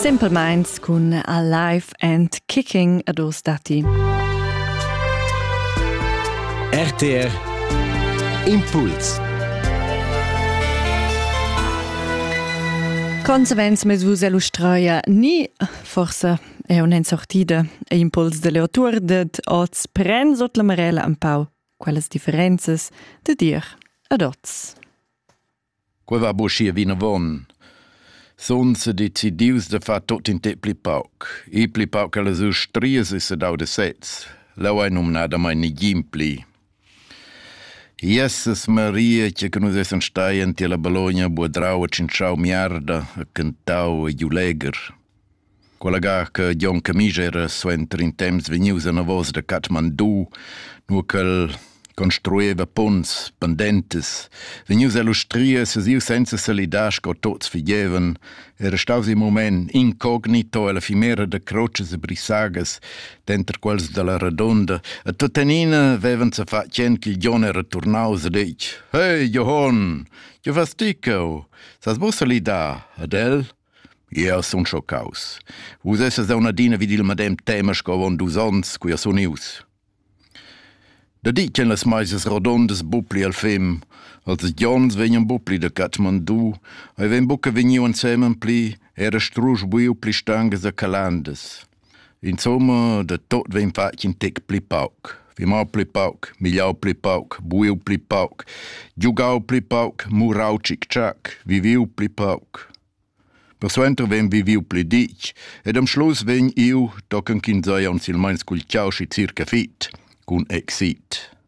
Simpelmeins cun Alive and Kicking ad os dati. RTR Impuls Consevenz mes vus illustraia ni forse è un en sortida e impuls delle autur det oz pren sot la marella un pau quellas differences de dir ad oz. Quei va buca vinavon. Sun sedecidius da far tut in tec pli pauc. Ir pli pauc allas ustrias e sedau da sez. Leu ei numnadamain negin pli. Jesus Maria, che che nus essan stai en tiella Bologna, buodrau e tschintschau miarda e cantau e giu legher. Quella gar che Jon Camisch era suenter in temps vegnius anavos da Kathmandu, nua ch'el construeva punts pendentas, vegnius a lustrir se siu senza salidar sco tuts figevan, era staus in mument incognito ella fimera da crotschas e brisagas, denter quels dalla Radunda, e tuttenina vevan se fatg tschien che Jon era turnaus e detg: Hey, Johann, che vas ti cheu? Sas vus salidar ad el? Jeu sun schoccaus. Vus essas daun adina vid il medem tema sco avon dus onns, cu jeu sun ius. Da di ch'en las meisas rodondas bupli al fem, als gions vegnan bupli da Kathmandu, ei vegn buca vegniu ensemen pli, era strusch buiu pli stangas da calandas. Insomma, da tot vegn fatg in tec pli pauc. Fimar pli pauc, migliau pli pauc, buiu pli pauc, giugau pli pauc, murau tschic-tschac, viviu pli pauc. Persuenter vegn viviu pli ditg ed am schluss vegn iu, tochen ch'ins ei aunc silmeins cul ciau schi circa fit, cun exit.